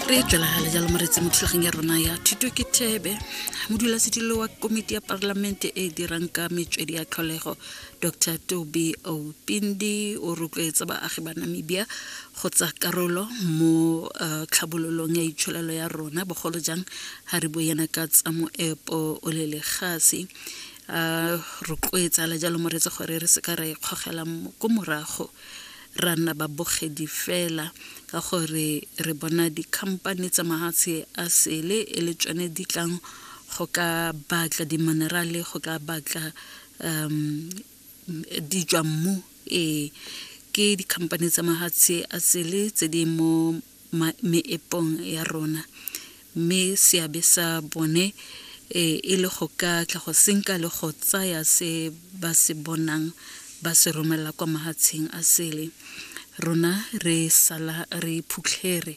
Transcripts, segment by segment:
re tlelagale jalo moretse mo thulageng ya rona ya thuto ke thebe modulasetilo wa komiti ya parlamente e e dirang ka metswedi ya tlholego dr toby opindi o rotloetsa baagi ba namibia go tsa karolo mo uh, tlhabololong ya itsholelo ya rona bogolo jang ga re bo yena ka tsa moepo o le legase uh, rotloetsa le jalo moretse gore re se ka ra ikgogela ko morago ra nna babogedi fela ka gore re bona dikhamphane tsa mahatshe a sele e le tsone di tlang go ka batla diminerale go ka batla um dijwa mmu ee ke dikhamphane tsa mahatshe a sele tse di mo meepong ya rona mme seabe sa bone e, e le go ka tla go senka le go tsaya se ba se bonang ba se romela kwa mahatsheng a sele rona re sala re phutlhere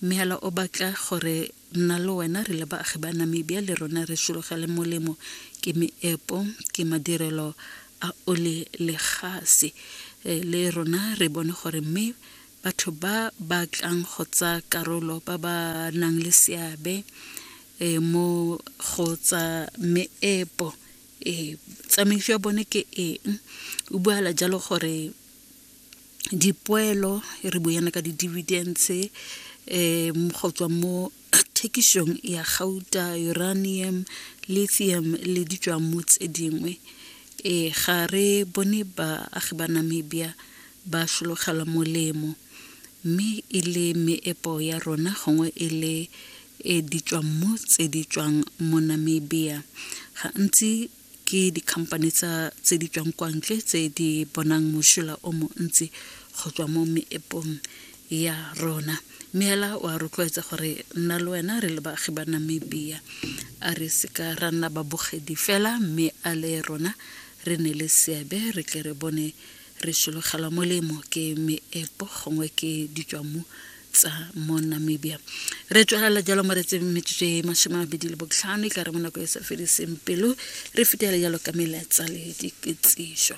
mme hela o batla gore nna le wena re le baagi ba namibia le rona re sologele molemo ke meepo ke madirelo a ole le gase eh, le rona re bone gore mme batho ba ba tlang go tsa karolo ba ba nang le seabe e mo go tsa meepo e tsamaiso ya bone ke eng o buala jalo gore dipoelo re buana ka di-dividends um go tswa mo thekišong ya gauta uranium lithium le ditswamo tse dingwe e ga re bone baagi ba namibia ba sologela molemo mme e le meepo ya rona gongwe e le e ditswammo tse di tswang mo namibia gantsi ke di-company tsa tse di tswang kwa ntle tse di bonang mosola o montsi go tswa mo meepong ya rona mme hela wa rotloetsa gore nna le wena re le baagi ba namibia a re seka ra nna babogedi fela mme a le rona re ne le seabe re tle re bone re sologela molemo ke meepo gongwe ke ditswamu tsa mo namibia re tswalela jalo mo re tseng metsotso e masome a mabedi le botlhano e ka re mo nako e sa fediseng pelo re fetele jalo ka meletsa le dikitsiso